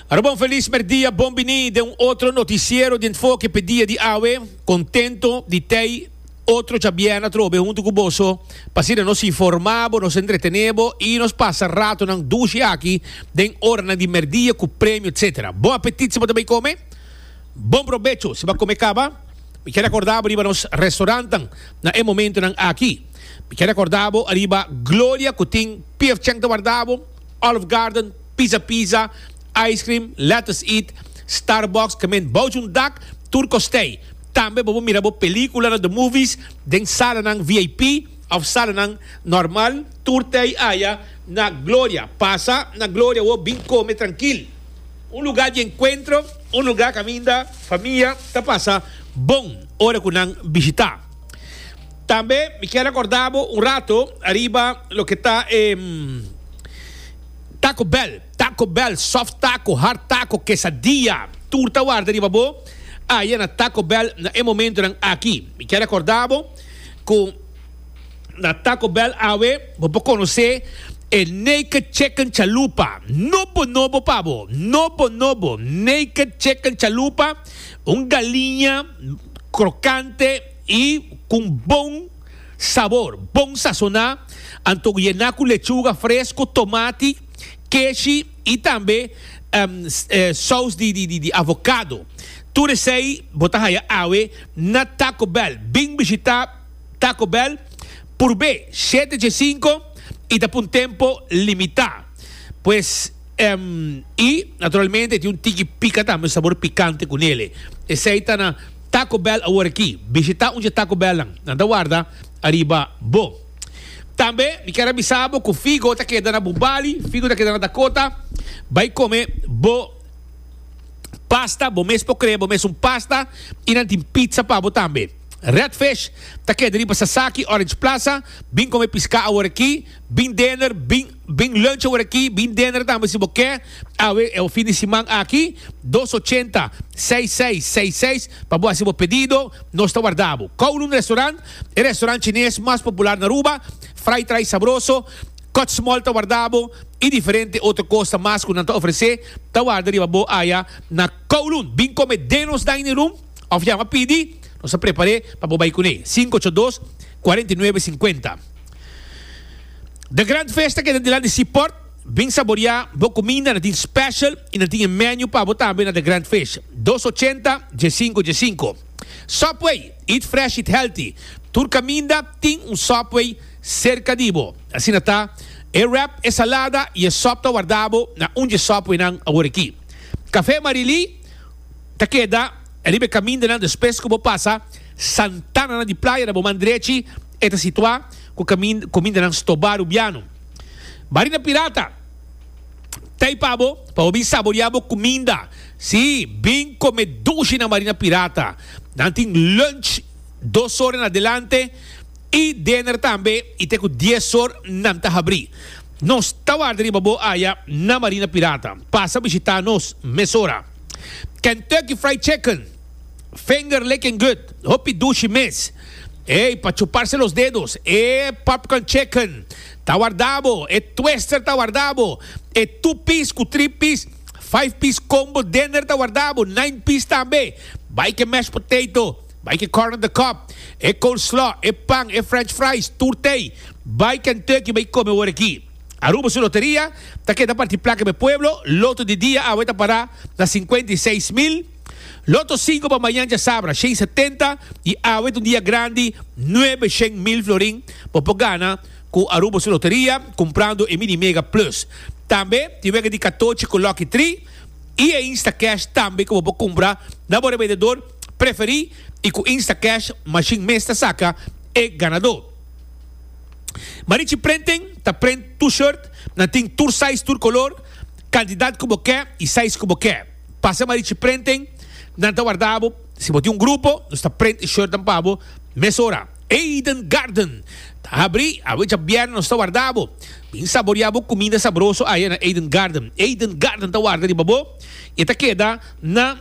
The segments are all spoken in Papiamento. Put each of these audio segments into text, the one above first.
Aroba un feliz merdia, bon bini den un otro noticiero di enfoque pe dia di awe. Contento di tei otro chabiena trobe hunto cu boso. Pasi nos informabo, nos entretenebo y nos pasa ratonan dushi aki den oranan di merdia cu premio etc. Bon apetit si bo ta bay come. Bon probecho si bo a come caba. Mi kier recordabo riba nos restaurantan na e momentonan aki. Mi kier recordabo riba Gloria cu tin pief cheng ta wardabo. Olive Garden, Pizza Pizza, Ice Cream, Lettuce Eat, Starbucks, Kement Bouch un Dak, Tur Kostei. Tambe bo por mira bo pelíkula na The Movies den salanan vip òf salanan nòrmal. Tur tei aya na Gloria. Pasa na Gloria wou bin kome trankil. Un lugá di enkuentro, un lugá kaminda famia ta pasa bon ora ku nan bishitá. Tambe mi kier recorda bo un rato ariba loke ta e Taco Bell, Taco Bell, soft taco, hard taco, quesadilla, tur ta warda riba bo aya na Taco Bell na e momentonan aki. Mi kier recorda bo cu na Taco Bell awe bo por conoce e Naked Chicken Chalupa, nobo nobo pa bo, nobo nobo, Naked Chicken Chalupa, un galiña. crocante y cu un bon sabor, bon sazona, anto cu yena cu lechuga fresco, tomati, keshi y tambe saus di avocado. Tur esey bo ta haya awe na Taco Bell. Bin bishita Taco Bell purbe siete dje cinco y ta pa un tempo limita pues. I naturalmente e tin un tiki pica tambe, sabor picante cu nele. Esey ta na Taco Bell awor aki. Bishita un dje Taco Bell nan. Nan ta warda ariba bo. Tambe mi kier a bisa bo cu Figo ta keda na bo Bali, Figo ta keda na Dakota. Bay come bo pasta, bo mes por crea bo mes un pasta. I nan tin pizza pa bo tambe. Red Fish ta keda riba Sasaki, Orange Plaza. Bin come pisca awor aki. Bin dinner, bin. Bin lunch awor aki, bin dinner tambe si bo ke, awe e fin di siman aki, dos ochenta, seis seis seis seis pa bo hasi bo pedido, nos ta warda bo. Kowloon Restaurant, e restaurant chines mas popular na Aruba, fried rice sabroso, kotsmol ta warda bo y diferente otro cosa mas cu nan ta ofrece ta warda riba bo aya na Kowloon. Bin come den nos dining room of yama pidi, nos ta prepare pa bo bay cune. Sinku ocho dos, kuarenta i nuebe, sinkuenta. De gran festa keda dilan di Seaport. Bin saboria bo kuminda, nan tin special y nan tin e menu pa bo tambe na de grand fish dos ochenta dje sinku dje sinku. Subway, eat fresh eat healthy, tur kaminda tin un Subway serka di bo. Asina ta, e wrap, e salada y e sop ta warda bo na un dje Subway nan awor aki. Cafe Marily ta keda riba e kamindanan despues ku bo pasa Santana nan di playa na bo man drechi. E ta situá ku kamindanan stobado biano. Barina Pirata ta i pa bo pa bo bin saboriá bo kuminda. Sí, bin kome dushi na Barina Pirata. Nan tin lunch dos or en adelante i dinner tambe i te ku dies or nan ta habrí. Nos ta warda riba bo aya na Barina Pirata. Pasa bishitá nos mesora. Kentucky Fried Chicken. Finger licking good, hopi dushi mes. Ey, pa chuparse los dedos. E popcorn chicken ta warda bo, e twister ta warda bo, e two piece cu three piece, five piece combo dinner ta warda bo, nine piece tambe. Bay ke mashed potato, bay ke corn on the cob, e coleslaw, e pan, e french fries, tur tey. Bay Kentucky bay come awor aki. Aruba su loteria ta keda parti placa me pueblo, loto di dia awe ta para na cincuenta y seis mil. Loto sinku pa mañan djasabra shen setenta y awe t'un dia grandi nuebe shen mil florin bo por gana cu Aruba su loteria cumprando e Mini Mega Plus. Tambe tin wega di katochi cu Lucky Tri y e Instacash tambe cu bo por cumpra na bo rebendedor preferi y cu Instacash machine mes ta saca e ganador. Marichi Printing ta print tur shirt, nan tin tur size tur color, cantidad cu bo ke y size cu bo ke. Pasa ma richi prenting, nan ta warda bo. Si bo tin un grupo, nos ta prent e shortnan pa bo mesora. Eden Garden ta habri awe djabièrnè, nos ta warda bo. Bin saborea bo kuminda sabroso aya na Eden Garden. Eden Garden ta warda riba bo i e ta keda na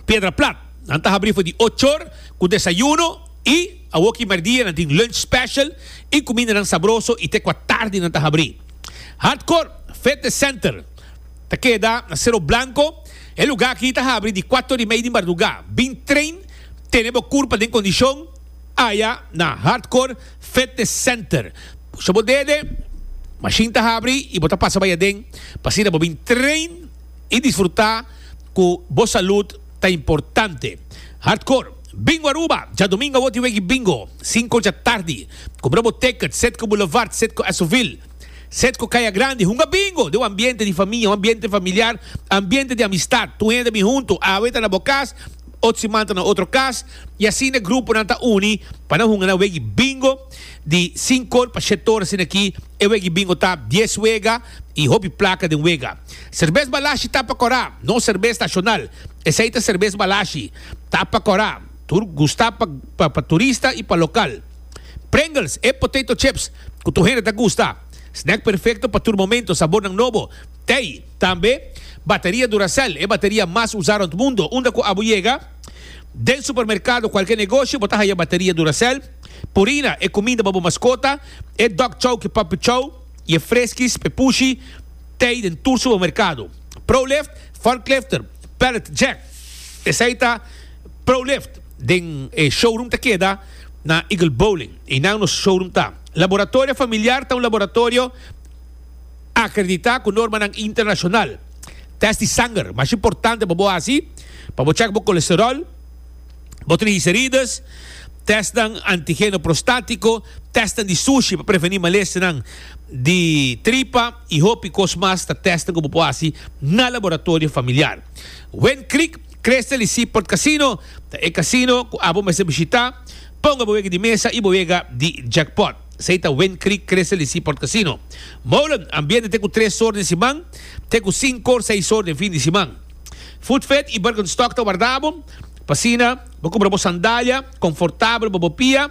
Piedra Plat. Nan ta habri for di ocho or ku desayuno i awoki mèrdia nan tin lunch special i kumindanan sabroso i te kua tardi nan ta habri. Hardcore Fitness Center. Ta keda na Sero Blanko, e luga aki ta habri di kuato di mei di marduga. Bin train tene bo kurpa den kondishon aya na Hardcore Fitness Center. Pusha bo dede, mashin ta habri i bo ta pasa bai aden pa asina bo bin train i disfruta ku bo salud ta importante. Hardcore Bingo Aruba, djadumingu awor tin weki Bingo, sinku ocha tardi. Kumbra bo ticket, Sitco Boulevard, Sitco Esovil. Set ku kaya grandi. Hunga bingo den un ambiente di famia, un ambiente familiar, ambiente di amistad. Tur hende bin huntu. Awe ta na bo kas, ot siman ta na otro kas. I asin e gruponan ta uni pa nan hunga nan wegi bingo di sinkor pa shet tor asina aki. E wegi bingo ta dies wega i hopi plaka den wega. Serbes Balashi ta pa kora, no serbes nashonal. Esei ta serbes Balashi. Ta pa kora. Tur gusta pa turista i pa lokal. Pringles, e potato chips cu tur hende ta gusta. Snack perfecto pa tur momento, sabornan nobo, tey. Tambe bateria Duracell, e bateria mas usa rond mundo. Unda cu abo yega den supermercado, cualkier negoshi, bo ta haya bateria Duracell. Purina, e cuminda pa bo mascota, e dog chow cu puppy chow, y e freskis, pepushi, tey den tur supermercado. Prolift, forklifter, pallet jack, esey ta. Prolift den e showroom ta keda na Eagle Bowling. Einan nos showroom ta. Laboratorio Familiar ta un laboratorio akreditá ku normanan internashonal. Tèst di sanger, masha importante pa bo hasi pa bo chèk bo kolesteròl, bo trigliserides, tèstnan antigeno prostátiko, tèstnan di sushi pa prevení malèsternan di tripa i hopi kos mas ta tèstnan ku bo por hasi na Laboratorio Familiar. Win Creek. Crystal y Seaport Casino ta e casino cu abo mester bishita. Ponga bo wega di mesa y bo wega di jackpot. Esey ta Wind Creek Crystal y Seaport Casino. Molen, Ambiente te cu tres sor den siman, te cu sincor seis sor den fin di siman. Food Fit y Birkenstock ta warda abo. P'asina, bo cumpra bo sandalia confortabel pa bo pia,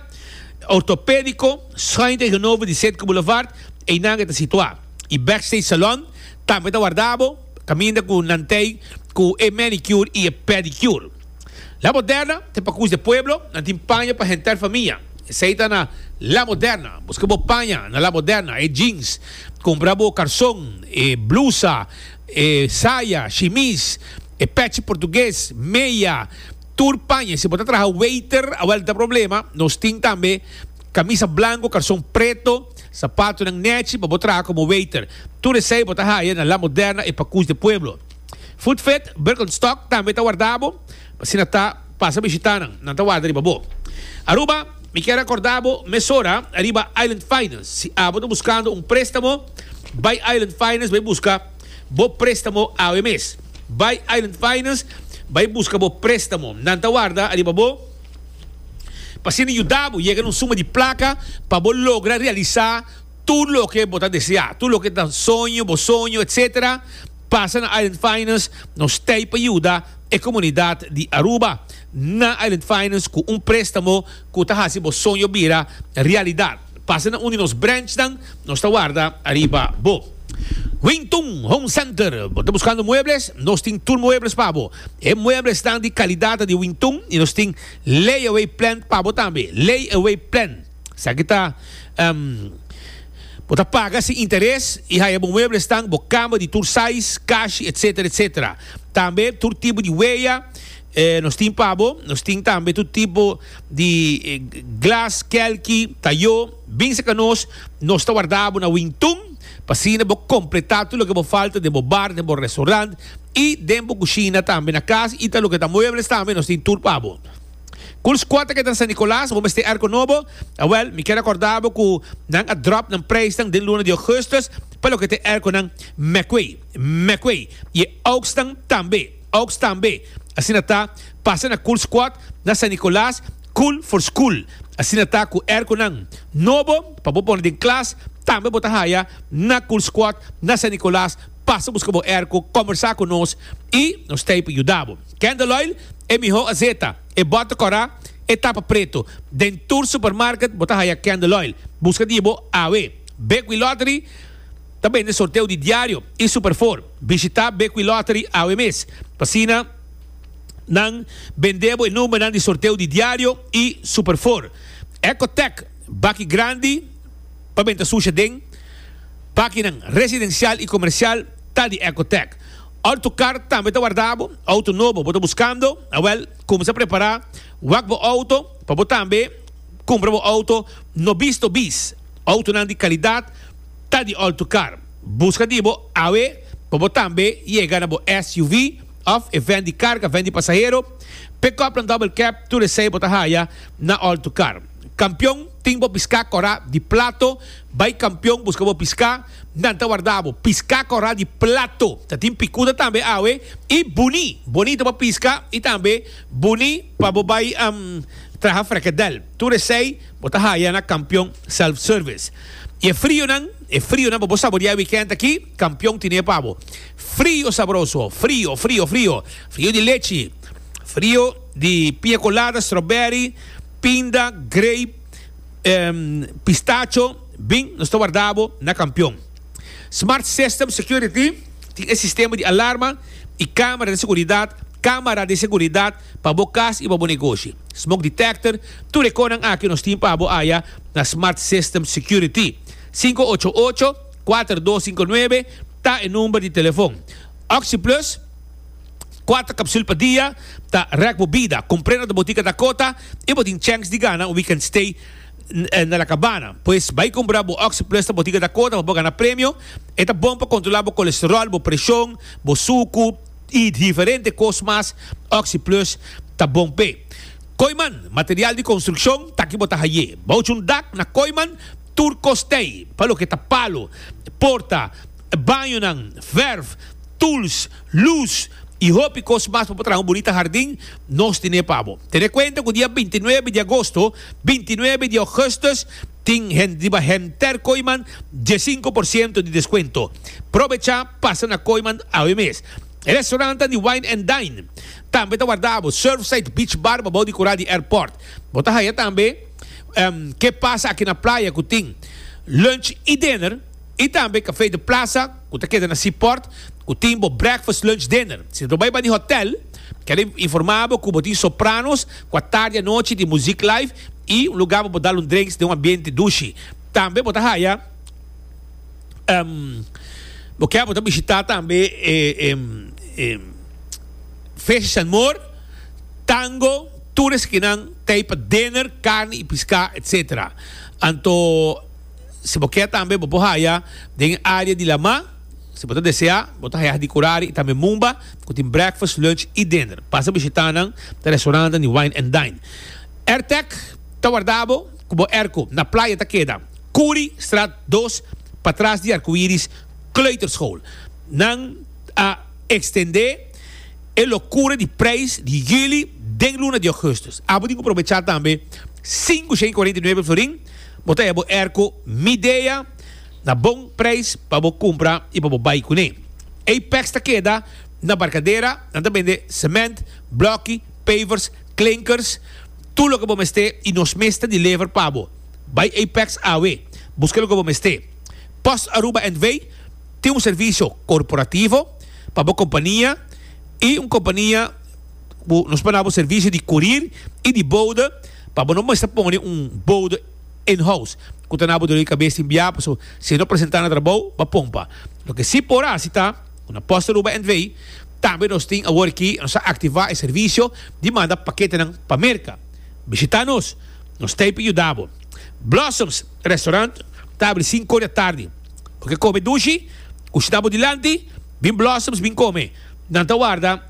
ortopedico, schuin tegenover di Citgo Boulevard, eynan e ta situa. Y Backstage Salon tambe ta warda abo. Caminda cu nan t'ey cu e manicure y e pedicure. La Moderna t'e pa cush de pueblo, nan tin paña pa henter famia. Esey ta na La Moderna. Busca bo paña na La Moderna, e jeans. Cumpra bo carson, e blusa, e saya, shimis, e pechi portugues, meya, tur paña. Si bo ta traha waiter, awel ta problema. Nos tin tambe camisa blanco, carson preto. Sapatonan nechi pa bo traha komo weiter. Tur esei bo ta haya na La Moderna e Pakus de Pueblo. Footfit, Birkenstock tambe ta warda bo. Asina ta, pasa bishita nan. Nan ta warda riba bo. Aruba, Mi kier rekorda bo mesora ariba Island Finance. Si abo ta buskando un prestamo, bai Island Finance bai buska bo prestamo awe mes. Bai Island Finance bai buska bo prestamo. Nan ta warda ariba bo. P'asina yuda bo yega na un suma di plaka pa bo logra realisá tur loke bo ta deseá, tur loke ta soño bo, soño etc. Pasa na Island Finance, nos t'ei pa yuda e komunidat di Aruba na Island Finance ku un préstamo ku ta hasi bo soño bira realidat. Pasa na un di nos branchnan, nos ta warda ariba bo. Wing Tung Home Center, bo ta buskando muebles? Nos tin tur muebles pa bo. E mueblesnan di kalidad ta di Wing Tung i nos tin layaway plan pa bo tambe. Layaway plan esaki ta bo ta paga sin interes i haya bo mueblesnan, bo kama di tur size, kashi etc. Tambe tur tipo di weya. E nos tin pabo, nos tin tambe tur tipo di glas, kelki, tayo. Bin serka nos, nos ta warda bo na Wingtun pa asina bo kompletá tur loke bo falta den bo bar, den bo restaurant i den bo kushina tambe. Na kas i ta loke ta muebles tambe nos tin tur pabo. Kurs kua ta keda na San Nicolas? Bo mester erko nobo? Awèl, mi kier akòrda bo ku nan a dròp nan preisnan den luna di Ougustus pa loke ta e erkonan mèkwei, mèkwei, i e ouksnan tambe. Oaks tambe. Asina ta, pasa na Cool Squad na San Nicolas, Cool for School. Asina ta cu er cu nan nobo pa bo pone den klas, tambe bo ta haya na Cool Squad na San Nicolas, pasa busca bo er cu combersa cu nos y nos ta hipo yuda bo. Kendall Oil, e miho azeta, e bota cora, e tapa preto. Den tur supermarket bo ta haya Kendall Oil. Busca di bo awe. Big Wheel Lottery. ta bende sorteo di diario y superfor. Bishita Bequilottery awe mes pa sina nan bende bo e numbernan di sorteo di diario y superfor. Ecotec baki grandi pa benta susha den bakinan residencial y comercial ta di Ecotec. Ora tu car tambe ta wardabo, auto nobo bo ta buscando, awel cuminsa prepara wak bo auto pa bo tambe cumpra bo auto no bisto bis. Autonan di calidad. ta di alto kar. Buska di bo awe pa bo tambe yega na bo SUV of e ven di karga, ven di pasahero, pick-up nan double cab, tur esei bo ta haya na alto kar. Kampion tin bo piska kora di plato, bai kampion buska bo piska, nan ta warda bo piska kora di plato, ta tin pikuda tambe awe y buni, bonito pa piska y tambe buni pa bo bai traha frekedel, tur esei bo ta haya na kampion self-service. Y e frionan, e frionan pa bo saboreá e weekend aki, Campeon tine pa bo. Frio sabroso, frio, frio, frio. Frio di lechi, frio di piña colada, strawberry, pinda, grape, ehm, pistacho. Bin, nos ta warda bo na Campeon. Smart System Security tin e sistema di alarma y camera di seguridad, camera di seguridad. pa bo cas y pa bo negoshi. Smoke Detector, Tur e conan aki nos tin pa bo aya na Smart System Security. Sinku ocho ocho, kuater dos sinku nuebe ta e number di telefon. OxyPlus, Kuater capsule pa dia ta rek bo bida. Compr'e na ta botica Dakota y bo tin chance di gana un weekend stay na La Cabana. Pues bay cumpra bo OxyPlus na botica Dakota pa bo gana premio. E ta bon pa controla bo colesterol, bo presion, bo sucu. y diferente cos mas Oxyplus ta bon p'e. Kooiman material di construccion taki bo ta haye bouch un dak na Kooiman tur cos t'ey pa loke ta palo, porta, bañonan, verf, tools, luz y hopi cos mas pa bo traha un bonita hardin nos tine pa bo. Tene cuenta cu dia binti nuebe di agosto, binti nuebe di augustus Tin hende riba henter Koiman diesinco por ciento di descuento. Probecha pasa na Koiman awe mes. E restaurantan di Wine and Dine tambe ta warda abo Surfside Beach Bar babou di kura di airport. Bo ta haya tambe Ke Pasa Aki na Playa ku tin lunch y dinner. Y tambe Café de Plaza cu ta keda na Sea Port cu tin bo breakfast, lunch, dinner. Si bo ta bay bani hotel, kel informa bo cu bo tin sopranos cu a tardi a nochi di muziek live y un lugar pa bo dal un drinks den un ambiente dushi. Tambe bo ta haya bo kier bo ta bishita tambe e Feestje San Moor, Tango, tur e skinan ta ay pa dinner, carne y pisca etc. Anto. Si bo kier tambe bo por haya den área di Lamá. Si bo ta deseá, bo ta haya di Curare i tambe Mumba ku tin breakfast, lunch i dinner. Pasa bishitá nan den restaurannan di Wine and Dine. Airtech ta warda bo ku bo airco. Na playa ta keda Kuri straat dos patras di Arcoiris Kleuterschool. Nan a extendé e locura di prijs di juli den luna di augustus. Abo tin ku probechá tambe sinku shen i kuarenta i nuebe florin. Bo ta hebo erko Midea na bon prijs pa bo kumpra i pa bo bai kuné. Apex ta keda na Barkadera, nan ta bende sement, blòki, pavers, klinkers, tur loke bo mester i nos mes ta deliver pa bo. Bai Apex awe, buska loke bo mester. Post Aruba NV. tin un servisio korporativo pa bo kompania i un kompania. bo nos por dabo servicio di corir y di bouda pa bo no mester pone un bouda in house cu ta nabo doli cabes tin bia paso si e no presenta na trabou ba pompa loke si por haci ta cu na post Aruba NV tambe nos tin awor aki nos a activa e servicio di manda paketenan pa Merca bishita nos nos t'ey pa yuda bo Blossoms restaurant ta abri sinku ora di atardi bo ke come dushi ku shina bo dilanti bin Blossoms bin come nan ta warda.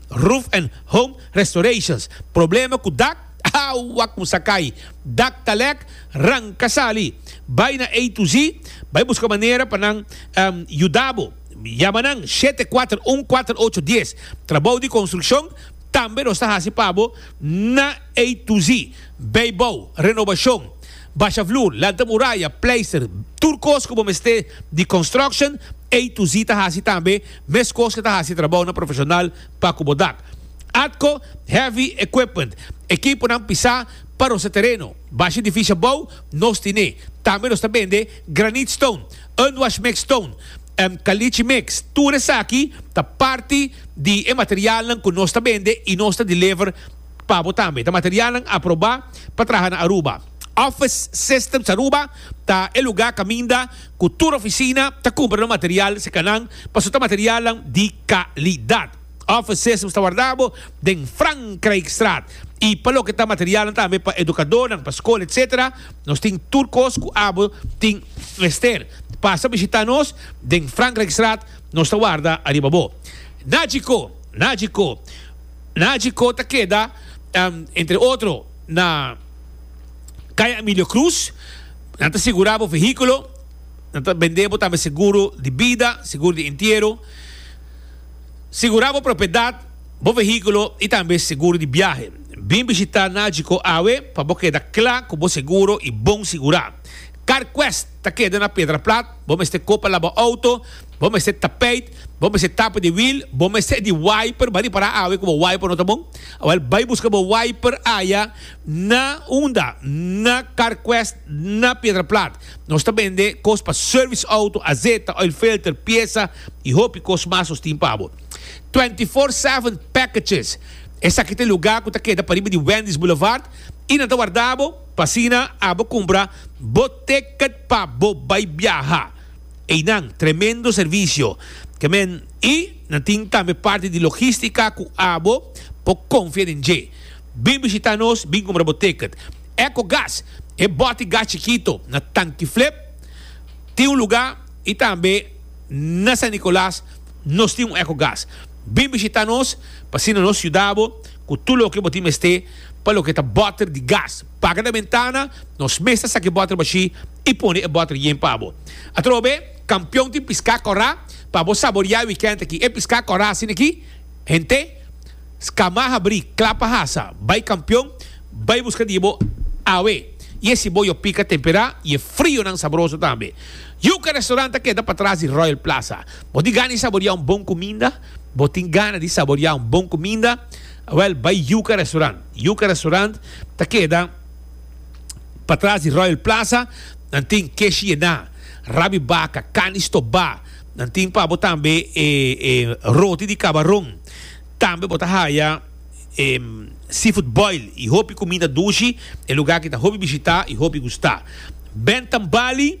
Roof and Home Restorations, Problema ku dak, Awa kumsa kai, dak ta lek, ranka sali. Bai na A to Z, bai buska manera pa nan yuda bo. Yama nan shete kuater un kuater ocho dies. Trabou di konstrukshon tambe nos ta hasi pa bo na A to Z, beibou, renobashon, basha flur, lanta muraya, pleister, tur kos ku bo mester di construction, A to Z ta hasi tambe. Meskos ke ta hasi trabounan profeshonal pa ku bo dak. Atco Heavy Equipment, ekiponan pisá pa rosé tereno, bashi difíshi abou, nos tiné. Tambe nos ta bende granit stone, unwash mix stone, en kalichi mix. Tur esaki ta parti di e materialnan ku nos ta bende i nos ta deliver pa bo tambe. Ta materialnan aprobá pa traha na Aruba. Office Systems Aruba ta e lugá kaminda ku tur ofisina ta kumpra no material si kanan paso ta materialnan di kalidat. Offices ta warda bo den Frankrijkstraat i pa loke ta materialnan tambe pa edukadónan, pa skol etc. Nos tin tur kos ku abo tin mester. Pasa bishitá nos den Frankrijkstraat, nos ta warda ariba bo. Najico, Najico, Najico ta keda entre otro na Kaya Emilio Cruz. Nan ta sigurá bo vehíkulo, nan ta bendé bo tambe seguro di bida, seguro di entiero, sigurá bo propiedat, bo vehíkulo i tambe seguro di biahe. Bin bishitá Nagico awe pa bo keda kla ku bo seguro i bon sigurá. CarQuest ta keda na Pedraplat, bo mester kopa laba outo, bo mester tapeit, bo mester tapa di wiel, bo mester di wiper, ba ripará awe ku bo wiper no ta bon, awel bai buska bo wiper aya. Na Unda, na Carquest, na Piedraplat. Nos ta bende kos pa service auto, azeta, oil filter, piesa y hopi kos mas nos tin pa bo. Twenty Four Seven Packages, Esaki ta e lugar cu ta keda pariba di Wendy's Boulevard y nan ta warda bo pa asina abo cumpra bo ticket pa bo bay biaha. Eynan tremendo servicio ke men y nan tin tambe parti di logistica cu abo por confia den dje. Bin bishita nos, bin kumbra bo ticket. Ecogas, e boti gas chikito na Tanki Flip tin un luga y tambe na San Nicolas nos tin un Ecogas. Bin bishita nos pa asina nos yuda bo cu tur loke bo tin mester pa loke ta boter di gas. Paga na bentana, nos mes ta saca e boter bashi y pone e boter yen pa bo. Atrobe, Campeon tin pisca cora pa bo saboria e weekend aki. E pisca cora asina aki, hente. Scamá habrí, clapa hasa, bai campion, bai busca di e bo awe, y e ciboyo pica temperá y e frionan sabroso tambe. Yuca Restaurant ta keda patras di Royal Plaza. Bo tin gana di saboriá un bon cuminda? Bo tin gana di saboriá un bon cuminda? Wel, bai Yuca Restaurant. Yuca Restaurant ta keda patras di Royal Plaza. Nan tin kesh yená, rab di baca, carni stobá. Nan tin pa bo tambe e roti di cabaron. Tambe bo ta haya e seafood boil y hopi cuminda dushi e lugar ki ta hopi bishita y hopi gusta. Bentham Bali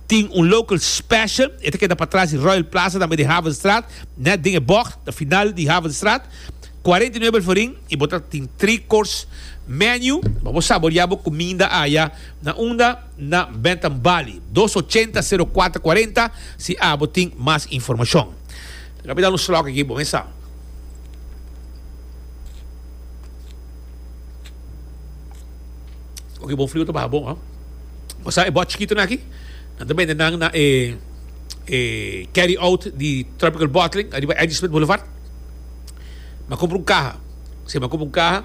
tin un local special, e ta keda patras di Royal Plaza tambe di Havenstraat, net den e bocht na final di Havenstraat, cuarenta y nuebe el forin y bo ta tin three course menu pa bo saborea bo cuminda aya. Na unda? Na Bentham Bali dos ochenta sero cuatro cuarenta si abo tin mas informacion. Lo mi dal un slok aki bo mesa. Oki bon fliu ta baha bon hoh. Bo sa e bòt chikitu nan aki? Nan ta bende nan na e e carry out di Tropical Bottling ariba Angie Smith Boulevard. M'a kumpra un kaha. Si m'a kumpra un kaha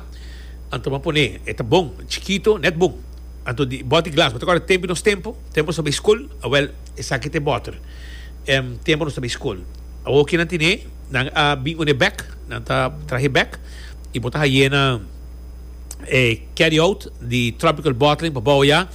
anto m'a pone. E ta bon, chikitu, nèt bon. Anto di bòt di glas bo ta kòrda tempu nos tempu, tempu nos ta bai skol? Awèl. Esaki ta e bòter en tempo nos ta bai skol. Awor ke nan tene, nan a bin unda e bèk, nan ta traha e bèk i bo ta haye na e carry out di Tropical Bottling pa bou ya,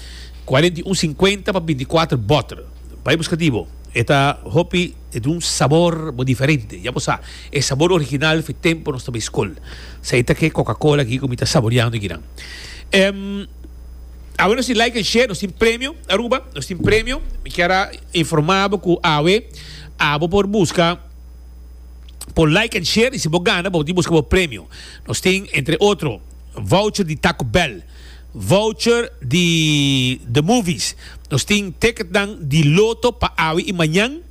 kuarenta i un sinkuenta pa binti kuater bòter. Bai buska di bo. E ta hopi e ta un sabor bo diferente. Ya bo sa, e sabor original for tempo nos ta bai skol. Sa e ta ke Coca-Cola aki ku mi ta saboriando aki nan. Awe nos tin like en share, nos tin premio Aruba, nos tin premio. Mi kier a informa bo cu awe abo por busca por like en share y si bo gana bo tin busca bo premio. Nos tin entre otro voucher di Taco Bell, voucher di The Movies, nos tin ticketnan di Lotto pa awe y mañan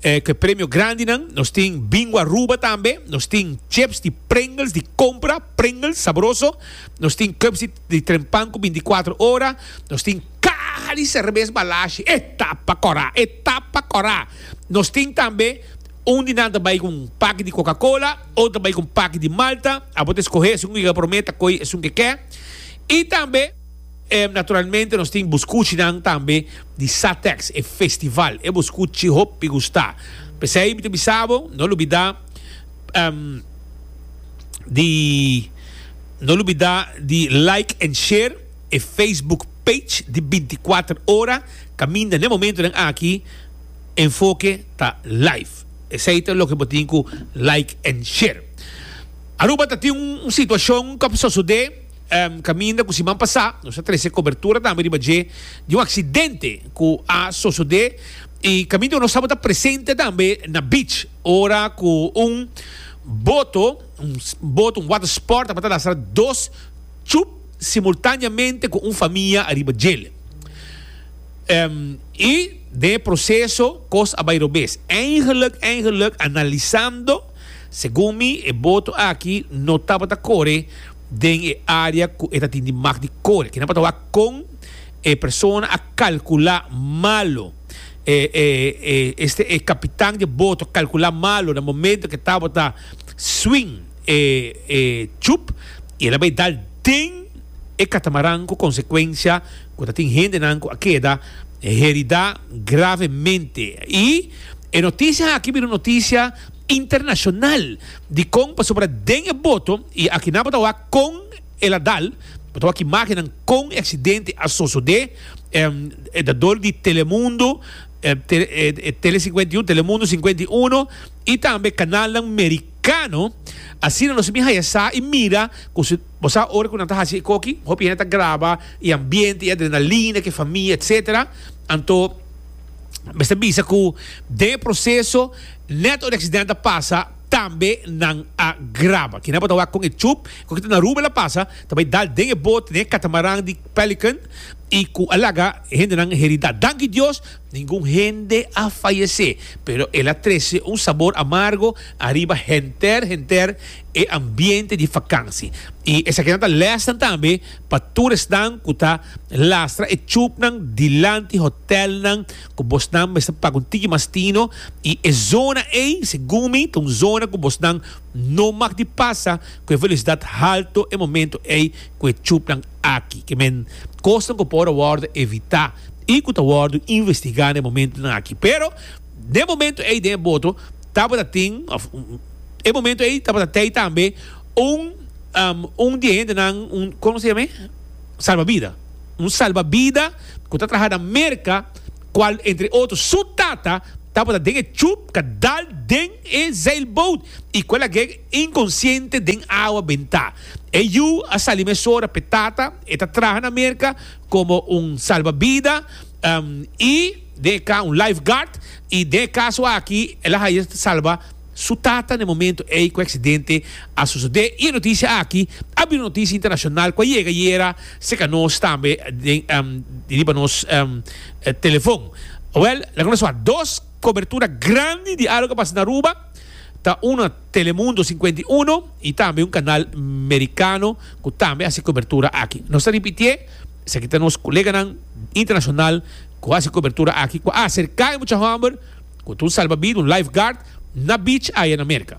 cu e premio grandinan, nos tin Bingo Aruba tambe, nos tin chips di Pringles di compra, Pringles sabroso, nos tin cups di. di tren pan ku binti kuater ora, nos tin kaha di serbes balashi. E ta pa kora! E ta pa kora! Nos tin tambe, un di nan ta bai ku un paki di kokakola, otro ta bai ku un paki di malta, abo ta eskohé esun ku ke promé ta koi esun ke ke. I tambe, naturalmente, nos tin buskuchinan tambe di Satex, e festival. E buskuchi hopi gusta. P'esei mi ta bisa bo, no lo bida di. No lubida di like en share e Facebook page di binticuater ora caminda n'e momentonan aki Enfoke ta live esey ta loke bo tin cu like en share. Aruba ta tin un situacion cu a sosode caminda cu siman pasa nos a trece cobertura tambe riba dje di un accidente cu a sosode y caminda cu nos tabata presente tambe na beach ora cu un boto Un bot, un water sport, tabata lastra dos chup simultaneamente cu un famia ariba djel. Y den e proceso cos a bay robes. Eigenlijk, eigenlijk, analisando, segun mi e bot aki no tabata core den e area cu e ta tin di mag di core. Kina tabata wak con e persona a calcula malo. E, e, e, este, e capitan di e bot a calcula malo na momento cu e tabata. swing e e chup y el a bay dal den e catamaran cu consecuencia cu ta tin hendenan cu a keda herida gravemente y e noticia aki bira un noticia internacional dicon pasobra den e boto y aki nan bo ta wak con el a dal bo ta wak imagennan con e accidente a sosode e dador di Telemundo Tele cincuenta y uno Telemundo cincuenta y uno y tambe canalnan mericano, asina nos a bin haya sa y mira cu si bo sa ora cu nan ta haci ecoki hopi hende ta graba y ambiente y adrenalina que famia etc. Anto mester bisa cu den e proceso net ora e accidente a pasa tambe nan a graba kinan bo ta wak con e chup ecoki ta na Aruba el a pasa ta bay dal den e boot den e catamaran di Pelican y cu a laga hendenan heri da danki Dios Ningun hende a fayesé, pero el a trese un sabor amargo ariba henter henter e ambiente di fakansi. I esakinan ta lèsnan tambe pa tur esnan ku ta lastra e tjupnan dilanti hotèlnan ku bosnan mester paga un tiki mas tino. I e zona ei, segun mi, ta un zona ku bosnan no mag di pasa ku e velosidat halto e momentu ei ku e tjupnan. aki ke men kosnan ku por a wòrdu evitá i ku ta wòrdu investigá na e momentunan aki. Pero den momentu ei den e boto tabata tin òf e momentu ei tabata tei tambe un un di e hendenan un kon se yam'e salbabida un salbabida ku ta traha na Merka kual entre otro su tata tabata den e chup kadal den e zeilboot i kual a ke Inkonsiente den awa bentá. E yu a sali mesora p'e tata, e ta traha na Merka komo un salbabida i den e ka un lifeguard, i den e kaso aki el a haña ta salba su tata n'e momentu ei ku e aksidente a sosodé, i e notisia aki a bira un notisia internashonal ku a yega ayera serka nos tambe di riba nos telefon. Wèl, laga nos wak dos kobertura grandi di algu ku a pasa na Aruba. Ta una Telemundo sinkuenta i uno i tambe un kanal merikano ku tambe hasi kobertura aki. Nos ta ripitié, esaki ta nos koleganan internashonal ku hasi kobertura aki ku a aserká e mucha hòmber ku ta un salbabida, un lifeguard, na beach aya na Merka.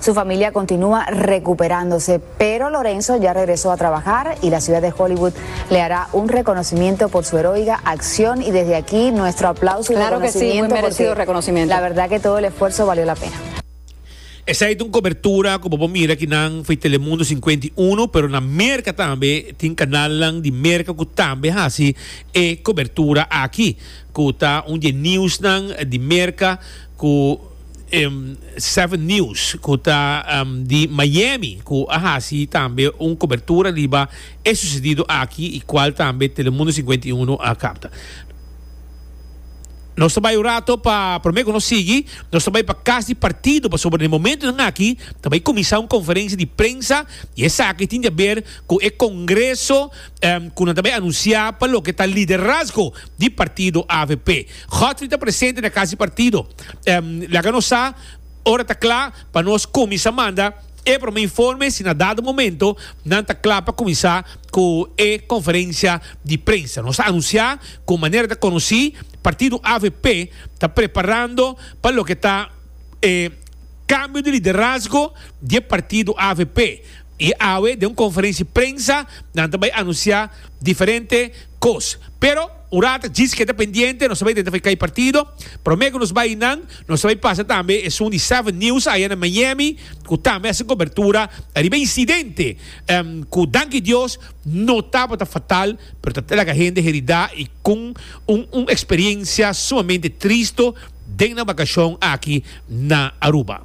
Su familia continua recuperándose, pero Lorenzo ya regresó a trabajar y la ciudad de Hollywood le hará un reconocimiento por su heroica acción y desde aquí nuestro aplauso y reconocimiento claro que sí, porque reconocimiento. la verdad que todo el esfuerzo valió la pena. Esei ta un cobertura cu bo por mira aki nan fo'i Telemundo cincuenta y uno, pero na Merca tambe tin canalnan di Merca cu tambe haci e cobertura aki, cu ta un di e nieuwsnan di Merca cu. 7 News cu ta di Miami cu a haci tambe un cobertura riba e sucedido aki y cual tambe Telemundo singenta i unu a capta. Nos ta bay un rato pa prome cu nos sigui, nos ta bay pa cas di partido pasobra den e momentonan aki ta bay cuminsa un conferencia di prensa y esaki tin di haber cu e congreso cu nan ta bay anuncia pa loke ta liderazgo di partido avp. Godfrey ta presente na cas di partido. Em, laga nos sa, ora ta kla pa nos kuminsá manda e promé informe si na dado momento nan ta kla pa kuminsá ku e konferensia di prensa. Nos ta anunsiá ku manera ta konosí, partido avp ta preparando pa loke ta e kambio di liderazgo di e partido avp. I awe den un konferensia prensa nan ta bai anunsiá diferente kos. Pero. Ora ta djis keda pendiente nos ta bay den ta kay partido. Prome cu nos bay eynan nos ta bay pasa tambe esun di Seven News aya na Miami cu tambe hasi cobertura ariba e incidente cu danki Dios no tabata fatal pero ta laga hende herida y con un un experiencia sumamente tristo den nan vacacion aki na Aruba.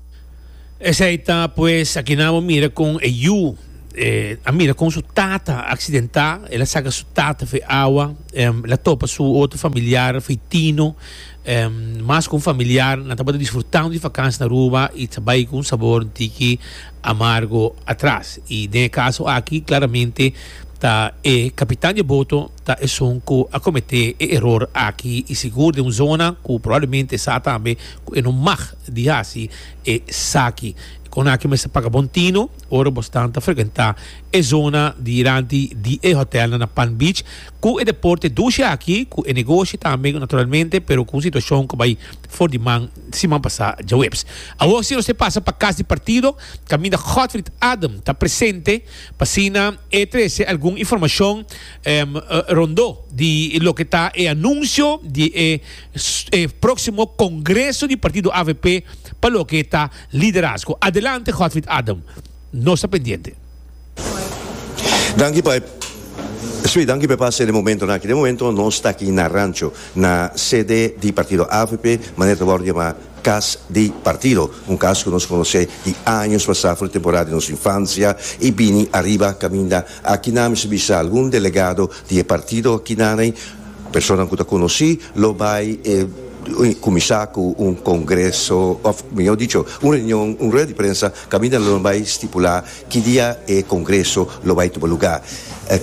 Esei ta pues a kina bo mira kon e yu a mira kon su tata a aksidentá. El a saka su tata for e awa. El a topa su otro familiar for e tino. Mas ku un familiar nan tabata disfrutando di vakansia na Aruba i ta bai ku un sabor un tiki amargo atras. I den e kaso aki klaramente ta e kapitan di e boto ta esun ku a kometé e eror aki. I sigur den un zona ku probablemente e sa tambe ku e no mag di hasi esaki. Kon aki mester paga bon tino ora bo stan ta frekentá e zona di ranti di e hotèlnan na Palm Beach ku e deporte dushi aki, ku e negoshi tambe naturalmente, pero ku un situashon ku bai for di man siman pasá djaweps. Awor si nos e pasa pa kas di partido kaminda Godfrid Adem ta presente pa asina e trese algun informashon rondó di loke ta e anunsio di e e próksimo kongreso di partido avp pa loke ta liderazgo. Adelante Godfried Adam, nos ta pendiente. Danki pa e Sí, danki pa e pase den momentonan aki. Den momentonan nos ta aki na Rancho, na sede di partido avp, manera ta wòrdu yamá Kas di Partido. Un kas ku nos konosé di años pasá, for di temporada di nos infansia i bini ariba kaminda akinan. Mi si bisa algun delegado di e partido akinanei. Personanan ku ta konosí lo bai kuminsá ku un kongreso, òf mihó dicho, un reunion, un rueda di prensa kaminda lo nan bai stipulá ki dia e kongreso lo bai tuma lugá.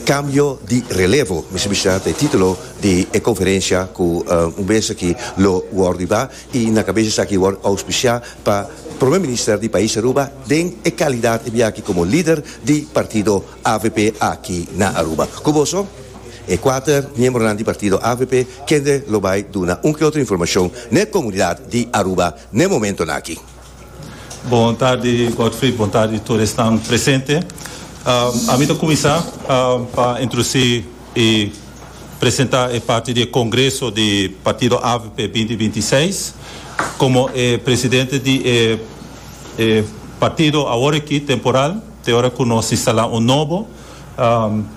Kambio di relevo, mester bishá ta e título di e konferensia ku un bes aki lo wòrdu ibá i na kabes esaki wòrdu ouspisiá pa Prome Minister di pais Aruba den e kalidat e biaha aki komo lider di partido avp aki na Aruba. Ku boso, e kuater miembronan di partido avp kende lo bai duna un ke otro informashon n'e komunidat di Aruba n'e momentonan aki. Bon tarde Godfrey, bon tarde tur esnan presente. Ami ta kuminsá pa introdusí i presentá e parti di e kongreso di partido avp binti binti i seis. Komo e presidente di e partido awor aki temporal. Te ora ku nos instalá un nobo,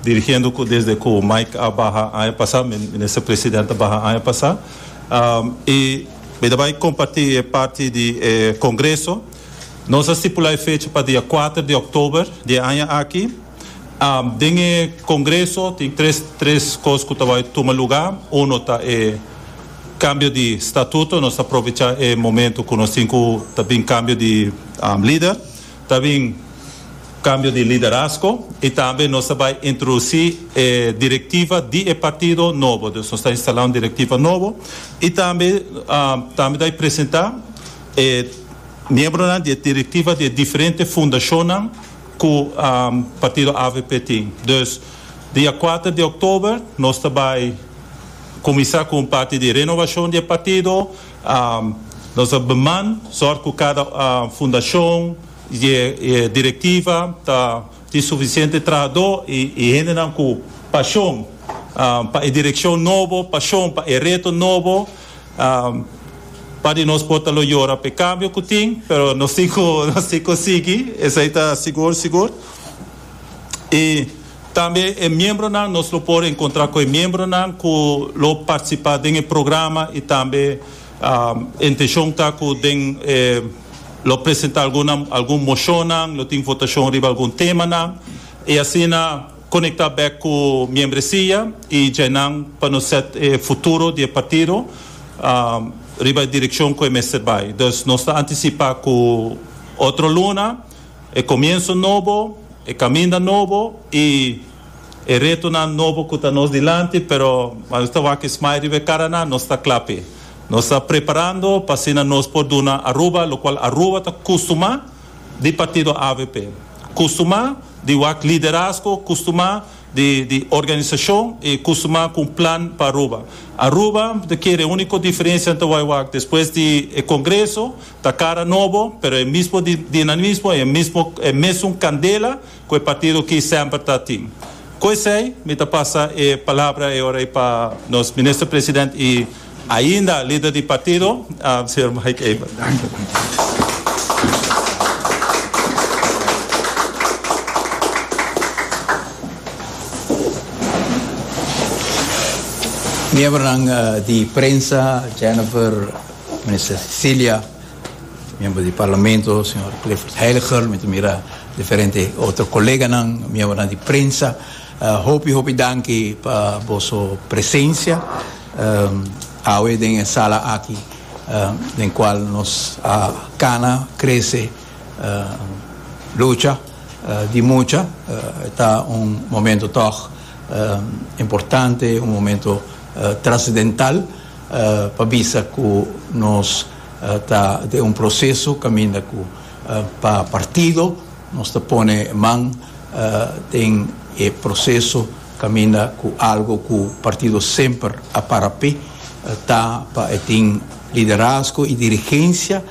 dirigiendo ku desde ku Mike a baha aña pasá, Minister President a baha aña pasá, i mi ta bai kompartí e parti di e Kongreso. Nos a stipulá e fecha pa dia kuater di òktober di e aña aki. Den e Kongreso tin tres tres kos ku ta bai tuma lugá. Uno ta e kambio di statuto, nos ta aprovechá e momentu ku nos tin ku ta bin kambio di lider. Ta bin cambio di liderazgo y tambe nos ta bay introduci e directiva di e partido nobo, dus nos ta instala un directiva nobo y tambe tambe ta presenta e miembronan di e directiva di e diferente fundacionnan cu partido avp tin. Dus dia cuater di october nos ta bay cuminsa cu un parti di renovacion di e partido. Nos a beman sòrt ku kada fundashon i e direktiva ta tin sufisiente trahadó i hendenan ku pashon pa e direkshon nobo, pashon pa e reto nobo. Part di nos por ta lo yora pa e kambio ku tin, pero nos tin ku sigui, esei ta sigur sigur. Tambe e miembronan, nos lo por encontra cu e miembronan cu lo participa den e programa y tambe e intencion ta cu den e lo presenta alguna algun mocionnan, lo tin votacion riba algun temanan y asina conecta bek cu miembresia y djainan pa nos set e futuro di e partido riba e direccion cu e mester bay. Dus nos ta anticipa cu otro luna. e comienso nobo, e caminda nobo y e retonan nobo cu ta nos dilanti, pero nos ta wak e smile riba e caranan, nos ta cla p'e. Nos ta preparando pa asina nos por duna Aruba, locual Aruba ta custumá di partido avp, custumá di wak liderazgo, custumá di organisacion y custumá cu un plan pa Aruba. Aruba ta kere e unico diferencia nan ta wak despues di e congreso, Ta cara nobo, pero e mismo dinamismo y e mismo e mesun candela cu e partido aki semper ta tin. Cu esey, mi ta pasa e palabra e ora ey pa nos Minister President y ainda Lider di Partido, Señor Mike Eber. Miembronan di prensa, Jennifer. Minister Cecilia, miembro di Parlamento señor Clifford Heiligher, mi ta mira diferente otro koleganan, miembronan di prensa, hopi hopi danki pa boso presencia awe den e sala aki den cual nos a cana, crece, lucha di mucha. E ta un momento tog importante, un momento trascendental. pa bisa cu nos ta den un proceso caminda cu pa partido nos ta pone man den e proceso caminda cu algo cu partido semper a para pe ta pa e tin liderazgo y dirigencia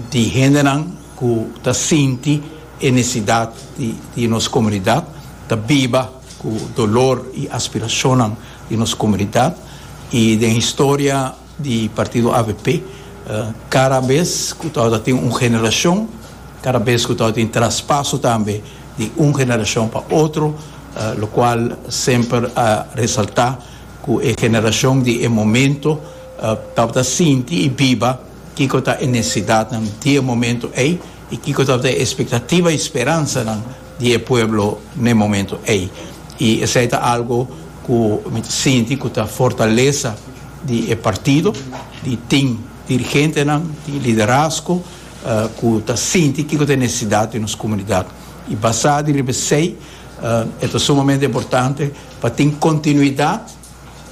di hendenan cu ta sinti e necesidad di nos comunidad ta biba Ku dolor i aspirashonnan di nos komunidat i den historia di partido avp kada bes ku ta ora tin un generashon, kada bes ku ta ora tin traspaso tambe di un generashon pa otro, lokual semper a resaltá ku e generashon di e momento tabata sinti i biba kiko ta e nesesidatnan di e momento ei i kiko tabata e espektativa i speransanan di e pueblo na e momento ey y esey ta algo cu mi ta sinti cu ta fortaleza di e partido y tin dirigentenan tin liderazgo cu ta sinti kico ta e necesidad di nos comunidad y basa di riba esey e ta sumamente importante pa tin continuidad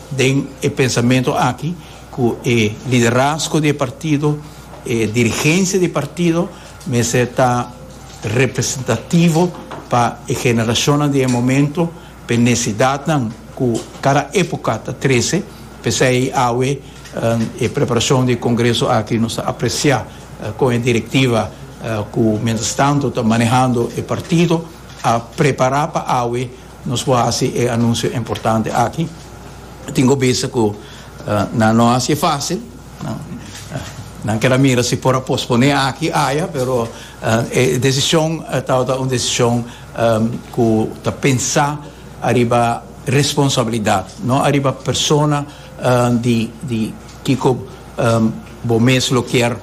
den e pensamento aki cu e liderazgo di e partido e dirigencia di e partido Mester ta representativo pa e generashonnan di e momentu, pa e nesidatnan ku kada époka ta trese. P'esei awe e preparashon di e kongreso aki nos ta apresiá kon e direktiva ku miéntrastantu ta manehando e partido a prepará pa awe Nos por haci e anuncio importante aki. Tin cu bisa cu nan no haci facil. Nan ker a mira si por a pospone aki aya, pero e decision tabata un decision cu ta pensa ariba responsabilidad, no ariba persona di di kico bo mes lo ker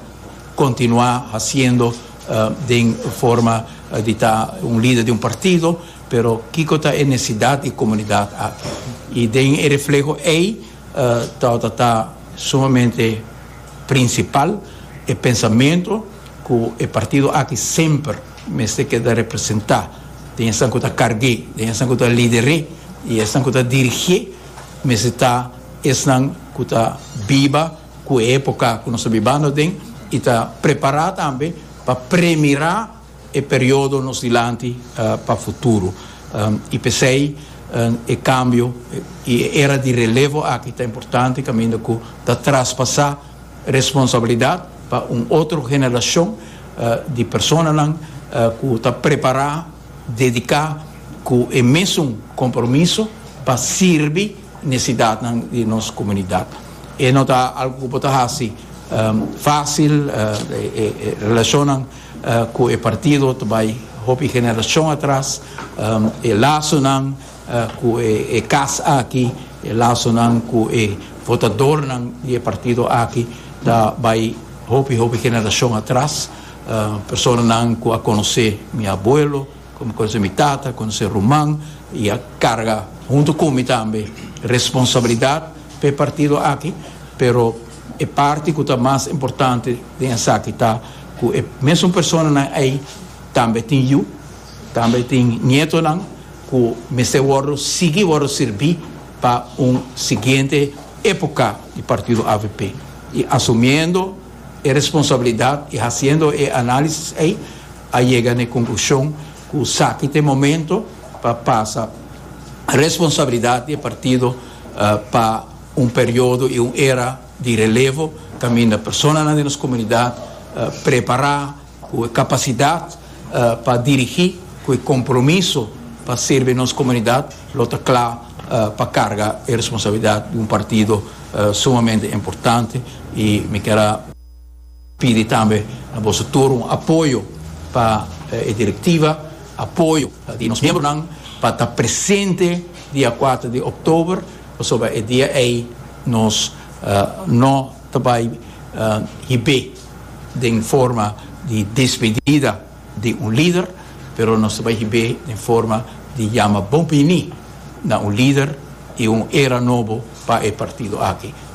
continua haciendo den forma di ta un lider di un partido. Pero kiko ta e necesidad di e comunidad aki? Y den e refleho ey tabata ta sumamente principal e pensamento cu e partido aki semper mester keda representa den esan cu ta carge, den esan cu ta lider'e y esan cu ta dirige mester ta esnan cu ta biba cu e epoca cu nos ta bibando den y ta prepara tambe pa premira. e periodo nos dilanti pa futuro y pesey e cambio y e era di relevo aki ta importante caminda cu ta traspasa responsabilidad pa un otro generacion di personanan cu ta prepara, dedica cu e mesun compromiso pa sirbi necesidadnan di nos comunidad. E no ta algo cu bo ta haci facil, e relacionnan. Cu e partido ta bay hopi generacion atras. E lazonan cu e cas aki, e lazonan cu e votadornan di e partido aki ta bay hopi hopi generacion atras. Personanan cu a conoce mi abuelo, cu a conoce mi tata, a conoce ruman y a carga hunto cu mi tambe responsabilidad pa e partido aki. Pero e parti cu ta mas importante den esaki ta. ku e mesun personanan ei tambe tin yu, tambe tin nietonan ku mester wòrdu sigui wòrdu sirbí pa un siguiente époka di partido avp. I asumiendo e responsabilidat i hasiendo e análisis ei a yega n'e konklushon ku saki t'e momento pa pasa responsabilidat di e partido pa un periodo i un era di relevo, kaminda personanan den nos komunidat prepará ku e kapasidat pa dirigí, ku e kompromiso pa sirbi nos komunidat, lo ta kla pa karga e responsabilidat di un partido sumamente importante i mi kera. Pidi tambe na boso tur un apoyo pa e Directiva, apoyo ta di nos miembronan pa ta presente dia kuater di Oktober pasobra e dia ei nos no ta bai hib'é den forma di despedida di un lider, pero nos ta bai hib'é den forma di yama bon biní na un lider i un era nobo pa e partido aki.